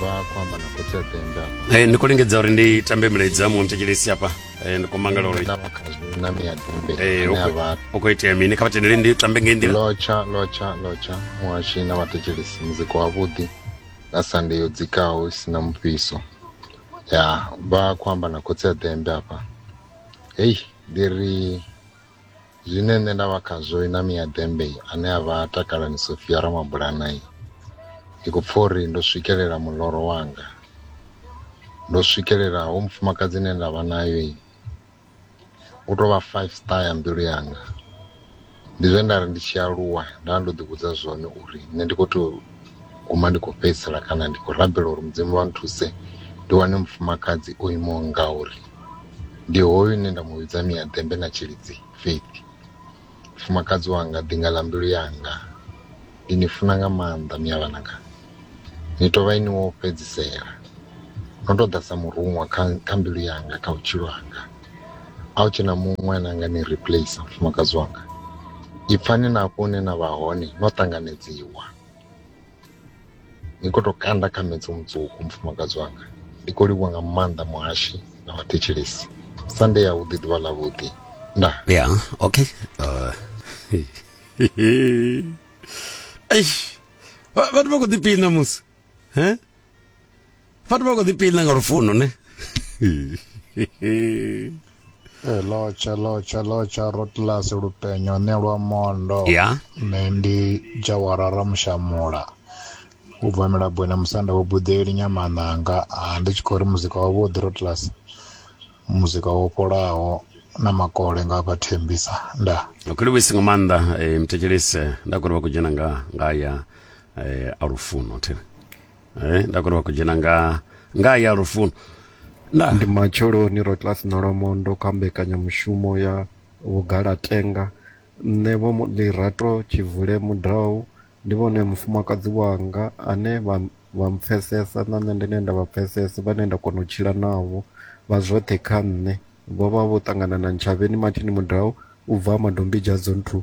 vha khou amba na khotsi a tenda eh, ndi khou lingedza uri ndi tambe milaedza ya muntetshelesi hafha eh, ndi khou mangala uri na miya dumbe eh, u khou itea mini kha vha tendele ndi tambe ngei nḓila lotsha lotsha lotsha muhashi na vhathetshelesi muzika wavhuḓi na sande yo dzikaho i si na mufhiso ya vha khou amba na khotsi a dembe hafha hei ndi ri zwine nṋe nda vha khazwo na miya dembe ane a vha takalani sofia ramabulana ndi khou pfha uri ndo swikelela muloro wanga ndo swikelela ho mufumakadzi ine nda vha nayo u tou vha five star ya mbilu yanga ndi zwe nda ri ndi tshi aluwa nda ndo ḓivhudza zwone uri nṋe ndi khou tou guma ndi khou fhedzisela kana ndi khou rabela uri mudzimu vha nthuse ndi wane mufumakadzi o imaho ngauri ndi hoyu une nda mu vhidza miaḓembe na tshilidzi faith mufumakadzi wanga ḓinga ḽa mbilu yanga ndi ni funa nga maanḓa miyavhananga ni tou vha ini wo fhedzisela no tou ḓa sa muruṅwa kha, kha mbilu yanga kha vhutshilo hanga a u tshena muṅwe ane anga ni replace mufumakadzi wanga ipfani na hafho hune na vha hone no ṱanganedziwa ni khou tou kanda kha metso mutswuku mufumakadzi wanga ndi khou livhuwa nga maanḓa muhashi na vhathetshelesi sande ya vhuḓi ḓuvha ḽa vhuḓi nda ya okay uh, eish vhathu vha khou ḓipina musi he vhathu vha khou ḓi pina nga lufuno ne Eh, lotsha lotsha lotsha rotllas lupenyo ne lwa mondo ya nṋe ndi jawarara mushamula u bva milabwena musanda wo buḓeli nyamananga Ah, ndi tshi khou ri muzika wavhuḓi rotllas muzika wo fholaho na makole nga vha thembisa nda ndo khou livhuisa nga maanḓa eh, mthetshelese nda khou ri vha khou dzhena nga nga ya eh, a lufuno thina eh, nda kona vha khou dzhena nga nga ya lufuno nda ndi matsheloni ro class na lwamondo kha mbekanyamushumo ya vhugalatenga nṋe vho mu- lirato tshivule mudau ndi vhone mufumakadzi wanga ane vha vha mpfesesa na nṋe ndine nda vha pfesesa vhane nda kona u tshila navho vha zwoṱhe kha nṋe vho vha vho ṱangana na ntshavheni mathini mudau u bva madombidzha dzonthu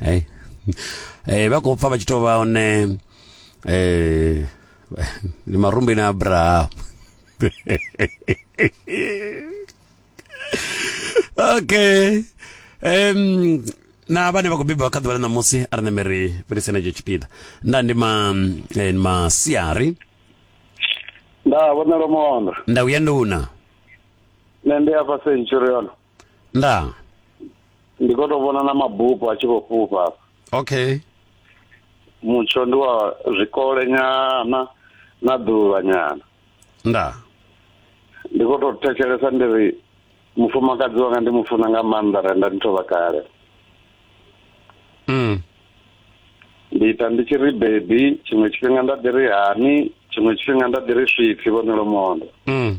hey. hey, eh, vha khou pfa vha tshi tou vha hone eh, ndi marumbi na abraham okay um, na vhane vha khou beba kha ḓuvha ḽa ṋamusi a ri neme ri fhelise na tsho tshipiḓa nda ndi ma eh, masiari nda vhonelo mondo nda uya nduna nṋe ndi afha centurion ndaa ndi khou tou vhona na mabupo a tshi khou fhufha okay mutsho ndi wa zwikole nyana na ḓuvha nyana ndaa ndi khou tou thetshelesa ndi ri mufumakadzi wanga ndi mu funa nga maanḓa renda ndi thovha kale mm. ndi ita ndi tshi ri bebi tshiṅwe tshifhinga nda ḓi ri hani tshiṅwe tshifhinga nda ḓi ri swipfi vhonelo mondo mm.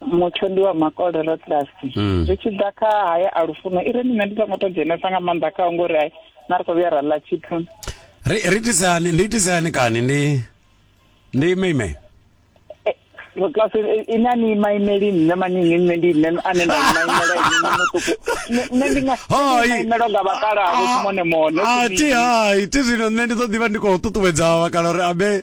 mutsho ndi wa makole ro tlasi mm. zwi tshi ḓa kha haya a lufuno i re nṋe ndi songo to dzhenesa nga maanḓa khao ngori ai na ri khou vhuya ra ḽa tshithu ri itisani ndi itisani kani ndi ndi ime ime eh, klasi eh, ina ni maimeli nne maningi nne ndi nne ane nda maimela ini mutuku nne ndi nga maimelo nga vhakala avo ah, mone mone a ah, ti hai ti zwino nne ndi ḓo ḓivha ndi khou ṱuṱuwedza vhakala uri abe ah,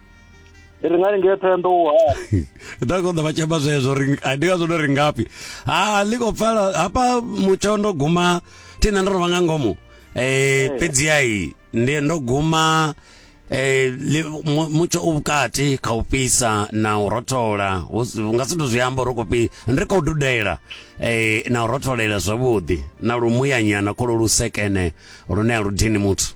ri nga lingea thoyando u hani nda konḓa vha tshemba zwezwo ri ndi ngazwo ndo ri ngafhi ha ḽi khou pfala hafha mutsho ndo guma thina ndo rovha nga ngomu eh fhedzi ai ndi ndo guma eh mutsho u vhukati kha u fhisa na u rothola nga si ndo zwi amba ro kopi ndi khou dudela eh na u rotholela zwavhuḓi na lumuyanyana kholo lusekene lune a lu dini muthu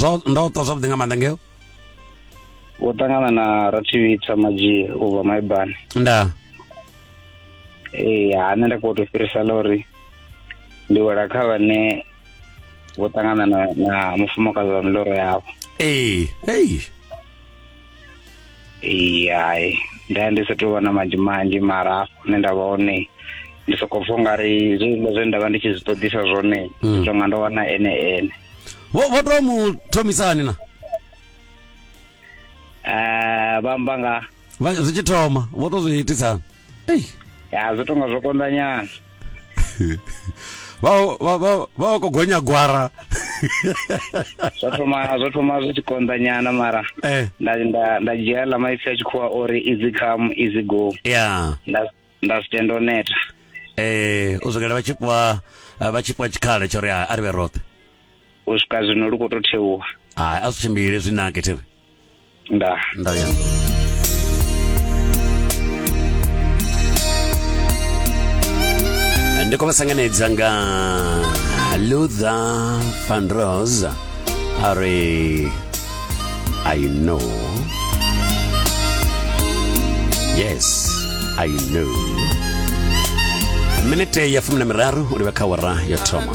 zwo ndo to zwavhuḓi nga maanḓa ngeo wo ṱangana na rathivhitsa madzhie u bva maibani nda ee ha nṋe nda khou to fhirisa ḽa uri ndi wela kha vhane vho ṱangana na na mufumakadzi wa miloro yavho ee ei Ee, hai nda ndi sa tou vha na manzhi manzhi mara hafho hune nda vha hone ndi sokou pfha ungari zwiḽa zwine nda vha ndi tshi zwi ṱoḓisa zwone Mm. zwi nga ndo wana ene ene vho vho to mu thomisani na Eh, vha amba nga vha- zwi tshi thoma vho to zwi itisani ei ya zwi tonga zwo konda nyana vha vha vha vha ko gonya gwara zwo thoma zwo thoma zwi tshi konda nyana mara eh nda nda nda dzhia la maipfi a tshikhuwa ori easy come easy go ya nda nda si tenda u neta eh u swikela vha tshi fhiwa eh, vha tshi fhiwa tshikhala tsho ri a a ri vhe roṱhe u swika zwino lu khou tou thewa hai a zwi tshimbile zwi nake thevhe Nda. Nda ya. ndi khou vha sanganedza nga luther van rose a ri i know yes i know minete ya fumi na miraru u livha kha wara yo thoma